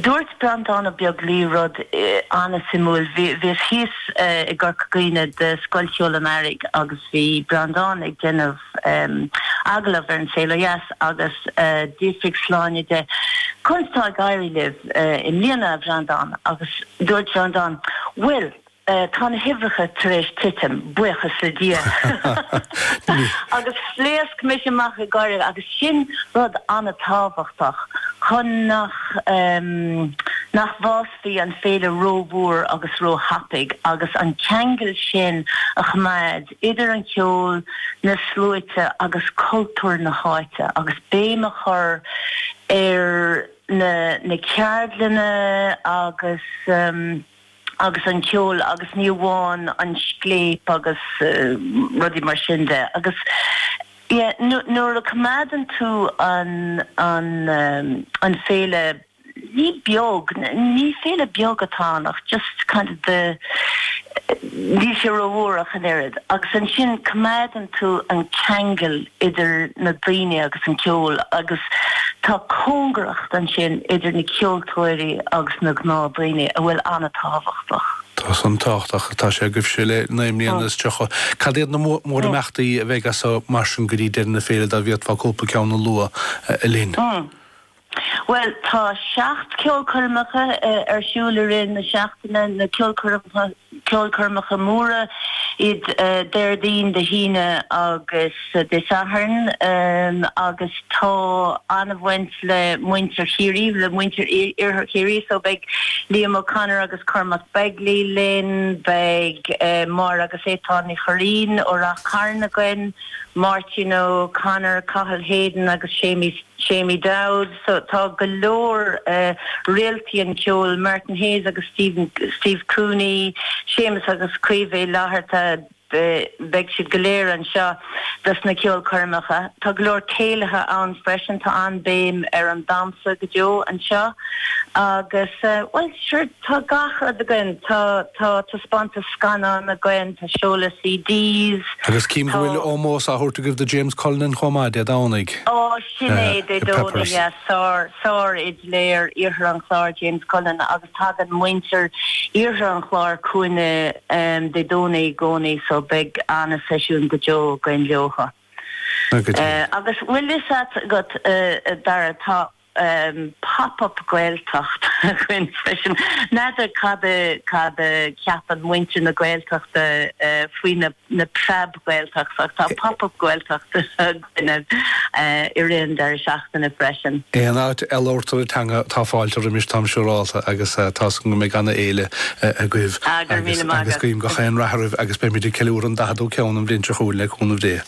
Dúirt Breandán Ó Beaglaoich rud an-suimiúil. Bhíos thíos i gCorca Dhuibhne do Scoil Cheoil an Earraigh agus bhí Breandán ag déanamh agallamh ar An Saol ó Dheas agus d'fhiafraigh Sláine de, Conas atá ag éirí libh i mbliana, a Bhreandán? Agus dúirt Breandán, Bhuel, Sea, tá na huimhreacha tar éis titim, buíochas le Dia, agus phléasc mise amach ag gáire, agus sin rud an-tábhachtach chun nach, nach bhfásfaidh an féile rómhór agus róthapaidh, agus an ceangal sin a choimeád idir an ceol, na sluaite agus cultúr na háite, agus béim a chur ar na, na ceardlanna agus. agus an cheoil agus ní amháin an scléip agus rudaí mar sin de agus nuair a choimeádann tú an féile ní beag, ní féile bheag atá ann ach just kind of the, níl sé ró-mhór ach an oiread agus ansin coimeádann tú an ceangal idir na daoine agus an ceol, agus tá cóngaracht ansin idir na ceoltóirí agus na gnáthdhaoine a bhfuil an-tábhachtach. Tá sé an-tábhachtach atá sé agaibhse le naoi mbliana is tríocha. Cad iad na mórimeachtaí a bheidh as seo mar sin go dtí deireadh na féile, dá bhféadfá cúpla ceann a lua linn? Bhuel, tá seacht ceolchoirmeacha ar siúl i rith na seachtaine, na ceolchoirmeacha móra, iad Déardaoin, Dé hAoine agus Dé Sathairn, agus tá an-bhaint le muintir Chiarraí, le muintir Iarthar Chiarraí, so beidh Liam O'Connor agus Cormac Begley linn, beidh Máire agus Étáin Ní Churraoin ó Ráth Chairn againn, Máirtín O'Connor, Cathal Hayden agus Séamus Seamie O'Dowd, so tá go leor réaltaí an cheoil, Martin Hayes agus Steve Cooney, Séamus agus Caoimhe Uí Fhlatharta, beidh siad go léir anseo dos na ceolchoirmeacha. Tá go leor céilithe ann freisin, tá an-béim ar an damhsa go deo anseo agus, bhuel, sure, Tá gach rud againn. Tá taispeántais scannán againn, tá seoladh CDs, tá. Agus cím go bhfuil ómós á thabhairt agaibh do James Cullinan chomh maith Dé Domhnaigh. Á, sin é, Dé Domhnaigh, ya, sár, sárfhidléir Iarthar an Chláir James Cullinan agus tagann muintir Iarthar an Chláir chugainne Dé Domhnaigh i gcónaí so beidh an-seisiún go deo againn leo. Agus bhfuil fhios a't agat, a Dhara, tá. Pop up Gaeltacht againn freisin. N'fheadar cad a cheapann muintir na Gaeltachta faoi na Preab Gaeltachta ach tá Pop up Gaeltacht againne i rith an deiridh seachtaine freisin. Aon áit a labhartar an teanga tá fáilte roimis táim siúrálta agus tá's agam go mbeidh ana fhéile agaibh agus guím gach aon rath oraibh agus beimid ag ceiliúradh an 40ú ceann an bhliain seo chugainn le cúnamh Dé.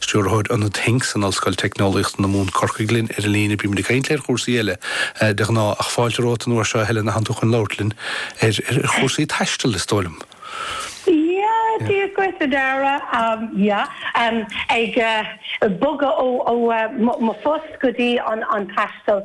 Stiúrthóir Ionad Hincks in Ollscoil Teicneolaíochta na Mumhan, Corcaigh linn ar an líne. Bímid ag caint ar chúrsaí eile de ghnáth, ach fáilte romhat an uair seo, a Helen, a thagann tú chun labhairt linn ar chúrsaí taistil, is dóigh liom. Yeah, Dia dhuit, a Dara. Yeah, ag bogadh ó mo phost go dtí an taisteal.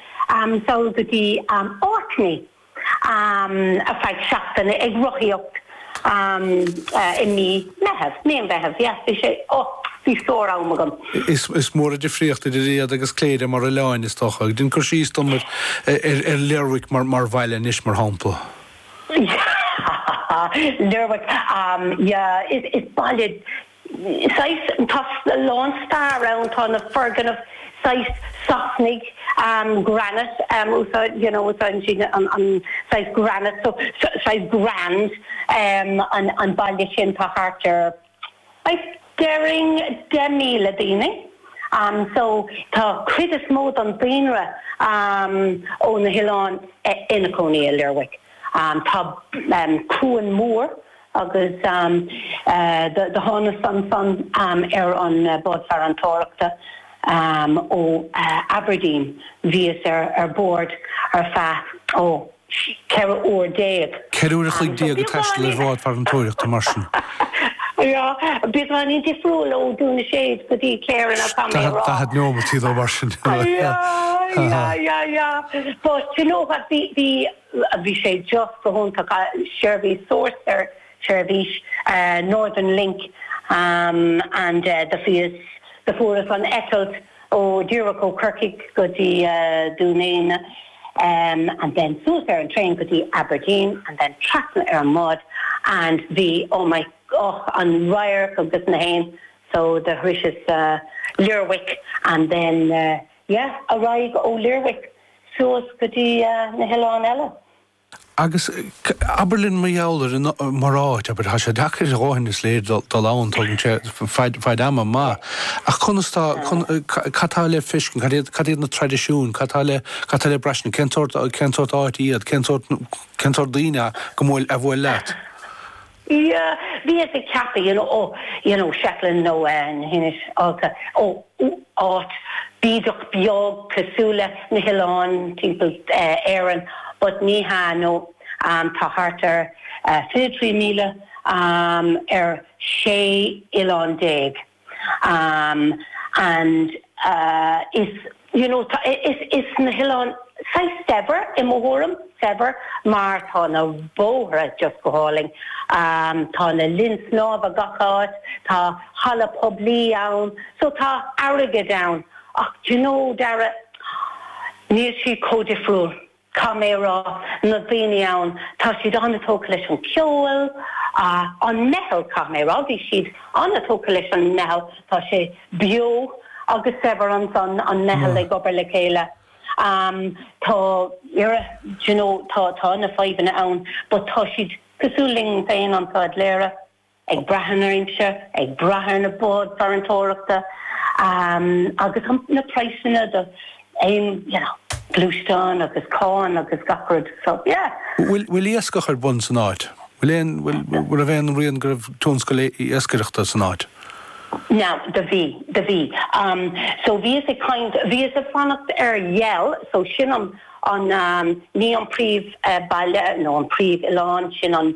sall go dtí Orkney, ar feadh seachtaine, ag rothaíocht i Mí Meitheamh, Meán Mheithimh, yeah, bhí sé, oh, bhí sár-am agam. Is mór an difríocht idir iad agus Cléire mar oileáin, is dócha. Déan cur síos dom ar Lerwick mar bhaile anois, mar shampla. Yeah, Lerwick, yeah, is baile saghas, tá a lán stair ann, tá na foirgnimh saghas Sasanaigh, granite, úsáid, you know, úsáideann siad an saghas granite so, saghas grand, an baile sin tá thart ar, I'd déarfainn deich míle daoine, so tá cuid is mó don daonra ó na hoileáin ina gcónaí i Lerwick. Tá cuan mór agus do thánas annsan ar an bád farantóireachta ó Aberdeen. Bhíos ar bórd ar feadh 14 uair. Ceithre uair a chloig déag ag taisteal ar bhád farantóireachta mar sin. Beagáinín difriúil ó Dún na Séad go dtí Cléire ná tá mé a rá. Daichead neomat nó mar sin. Sea, sea, sea. But, you know what, bhí. Bhí sé just go hiontach, seirbhís sárcheart, seirbhís Northern Link and do bhíos, do fuaireas an eitilt ó, díreach ó Chorcaigh go dtí Dún Éideann and then suas ar an traein go dtí Aberdeen and then trasna ar an mbád and bhí, oh my, oh an radharc agus na héin so do shroiseas Lerwick and then, yeah, ar aghaidh ó Lerwick suas go dtí na hoileáin eile. Agus abair linn mar gheall ar an mar áit, abair, tá sé deacair a dhóthain, is léir, dul ann, tógann sé fad ama maith, ach conas tá, cad tá le feiscint, cad iad, cad iad na traidisiúin, cad tá le, cad tá le braistint, cén sórt, cén sórt áit iad, cén sórt, cén sórt daoine go mbuail, a bhuail leat? Yeah, bhíos ag ceapadh, you know, oh, you know, Shetland nó na hInse Shealtainn, oh, áit bídeach beag cosúil le na hoileáin timpeall Éireann but ní hea, no, tá thart ar 23,000 ar 16 oileán. Um and uh is you know tá is is na hoileáin saghas saibhir i mo thuairim, saibhir mar tá na bóithre just go hálainn, um tá na linn snámha gach áit, tá halla poiblí ann, so tá airgead ann ach do you know Dara, níl siad chomh difriúil. Caithfidh mé a rá, na daoine ann, tá siad an-tógtha leis an cheol, an meitheal, caithfidh mé a rá, bhí siad an-tógtha leis an meitheal, tá sé beo agus saibhir ansan, an meitheal ag obair le chéile. Tá, you know, tá na fadhbanna ann but tá siad cosúil linn féin, an saghas léire. ag brath ar na ferries, ag brath ar na báid farantóireachta agus na praghsanna d'aon ghluaisteán agus cáin agus gach rud. So, yeah. Bhfuil iascach ar bun san áit? Bhfuil aon, bhfuil, raibh aon rian go raibh tionscal iascaireachta san áit? Now, do bhí, do bhí. So bhíos ag caint, bhíos ag fanacht ar Yell, so sin an, ní an príomh-bhaile nó an príomh-oileán, sin an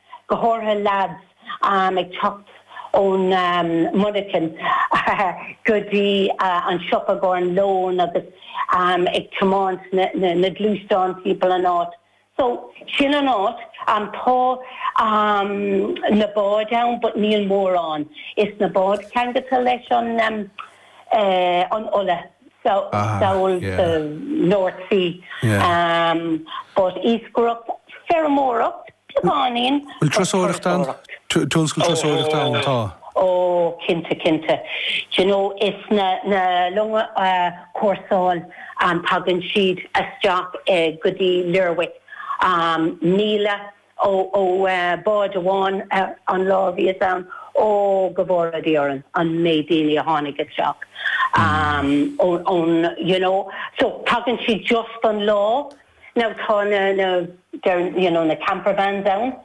go háirithe leads ag teacht ón monarchain go dtí an siopa i gcomhair an lón agus ag tiomáint na gluaisteáin timpeall an áit so sin an áit tá na báid ann but níl mórán is na báid ceangailte leis an an ola, amuigh sa North Sea, but iascaireacht, feirmeoireacht, beagáinín, but turasóireacht, tionscal turasóireachta ann, tá. ó, cinnte, cinnte, d'you know, is na longa cúrsála, tagann siad isteach go dtí Lerwick, míle, ó bhád amháin an lá a bhíos ann. Ó, go bhfóire Dia orainn, an méid daoine a tháinig isteach ón, you know. So, tagann siad just don lá. Now, tá na, you know, na campervans ann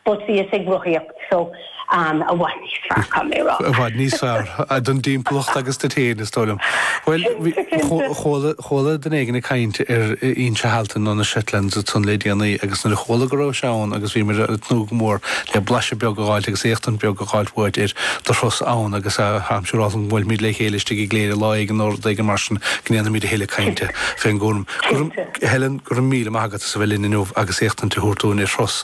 but bhíos ag rothaíocht, so. Ann, i bhfad níos fearr, caithfidh mé a rá. I bhfad níos fearr, don dtimpeallacht agus duit féin, is dóigh liom. Bhuel, chuala duine éigin ag caint ar Inse Shealtainn nó na Shetlands ansan le déanaí agus nuair a chuala go rabhais ann agus bhíos ag tnúth go mór le blaiseadh beag a dh'fháilt agus éachtaint beag a dh'fháilt uait ar do thuras ann agus I'm sure go mbuailfimid le chéile istigh i gCléire lá éigin nó rud éigin mar sin go ndéanfaimid a thuilleadh cainte fén gcúram. Helen, go raibh míle maith agat as a bheith linn inniu agus éachtaint a thabhairt dúinn ar do thuras